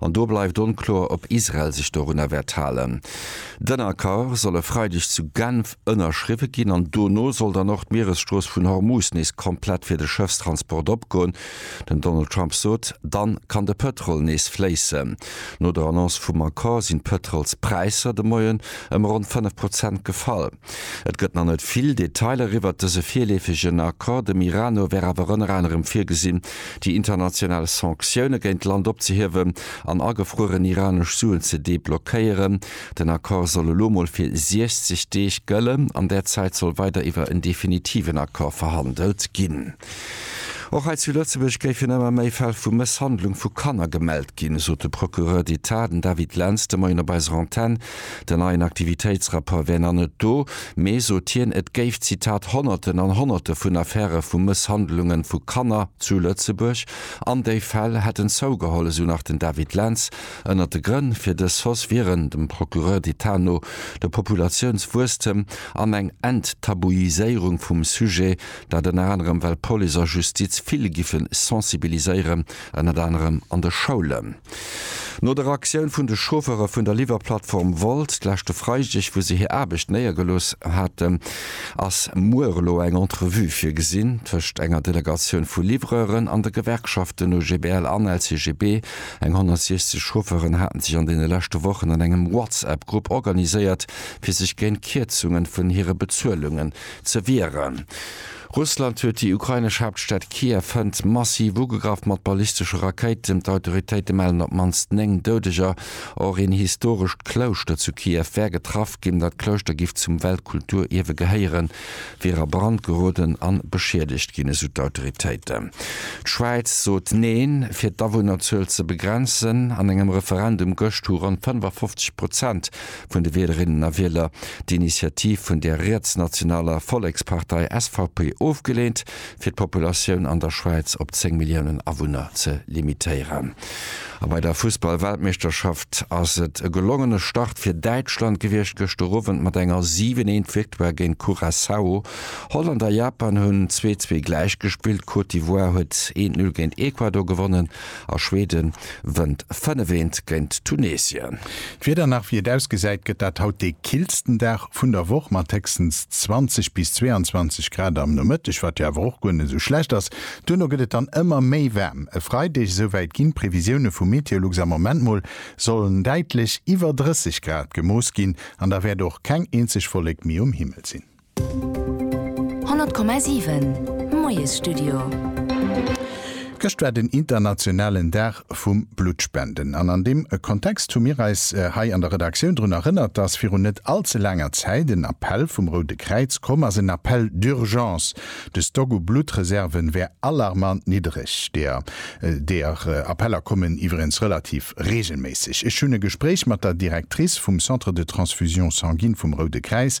An do bleift onkloer, ob Israel sech dorunner wäert halen. Den Accord soll e Freideg zu Genf ënnerschriwwe ginn an dono soll dann och d'Mieresstrooss vun Hormuz nees komplett fir de Schëffstransport opgoen. Den Donald Trump sot, dann kann de Pëtrol nees fléissen. No der Annonce vum Accord sinn d'Pëtrolspräisser de Moien ëm ronn 5 Prozent gefall. Et gëtt nach net vill Detailer iwwert dëse virleefegen Accord. Dem Iran no wär awer ënner anerem virgesinn, déi international Sanktioune géint d'Land opzehiewen an agefrueren iranesch Suen ze deblockéieren. Den Accord soll elo mol fir 60 Deeg gëllen. An där Zäit soll weider iwwer en definitiven Accord verhandelt ginn. Och hei zu Lëtzebuerg géifen ëmmer méi Fäll vu Mësshandlung vu Kanner gemellt ginn, sot de Procureur d'Etat, den David Lentz, de Moien op eiser Antenn. Den neien Aktivitéitsrapport wär nach net do, mee, sot hien, et géif, Zitat, Honnerten an Honnerte vun Affäre vu Mësshandlunge vu Kanner zu Lëtzebuerg an déi Fäll hätten zougeholl, esou nach den David Lentz. Ënnert de Grënn fir dës Hausse wieren, dem Procureur d'Etat no, de Populatiounswuesstem an eng Enttabuiséierung vum Sujet, dat ënner anerem, well Police a Justiz vill giffe sensibiliséieren, ënnert anerem an de Schoulen. No der Aktioun vun de Chauffeure vun der Liwwerplattform Wolt d'leschte Freideg, wou se hir Aarbecht néiergelooss haten, ass muer elo eng Entrevue virgesinn tëscht enger Delegatioun vu Livreuren an de Gewerkschaften OGBL an LCGB. Eng 160 Chauffeuren haten sech an deene leschte Wochen an engem WhatsApp-Grupp organiséiert, fir sech géint Kierzungen vun hire Bezuelungen ze wieren. Russland huet déi ukrainesch Haaptstad Kiew hënt massiv ugegraff mat ballistesche Rakéiten. D'Autoritéite mellen op d'mannst 9 Doudeger. Och een historescht Klouschter zu Kiew wär getraff ginn. Dat Klouschter giff zum Weltkulturierwe gehéieren, wier a Brand geroden an beschiedegt ginn, esou d'Autoritéiten. D'Schwäiz sot Neen. Fir d'Awunnerzuel ze begrenzen, An engem Referendum gëscht hu ronn 55 Prozent vun de Wielerinnen a Wieler d'Initiativ vun der rietsnationaler Vollekspartei SVP ofgeleent, fir d'Populatioun an der Schwäiz op 10 Milliounen Awunner ze limitéieren. A bei der Fussball-Weltmeeschterschaft ass et e gelongene Start fir Däitschland gewiescht gëschter Owend mat enger 7, 1 Victoire géint Curaçao. Holland a Japan hunn 2, 2 gläichgespillt. D'Côte d'Ivoire huet 1, 0 géint Ecuador gewonnen. A Schweden wënnt fënnef eent géint Tunesien. D'Wieder nach wéi et ausgesäit, gëtt dat haut dee killsten Dag vun der Woch mat héchstens 20 bis 22 Grad am Nomëtteg, wat jo awer och guer net sou schlecht ass. Duerno gëtt et dann ëmmer méi waarm. E Freideg, esouwäit ginn d'Previsioune vu Meteolux am Ament mol, sollen däitlech iwwer 30 Grad gemooss ginn an da wäert och keng eenzeg Wollek méi um Himmel sinn. 100,7 Moiesstudio. Gëscht war den internationalen Dag vum Bluttspenden an an deem Kontext hu mir eis hei an der Redaktioun drun erënnert, dass virun net all ze laanger Zäit en Appell vum Roude Kräiz komm ass, en Appel d'urgence. De Stock u Bluttreserven wär alarmant niddereg. Deer deer Appeller kommen iwwregens relativ reegelméisseg. Ech hunn e Gespréich mat der Directrice vum Centre de transfusion sanguine vum Roude Kräiz,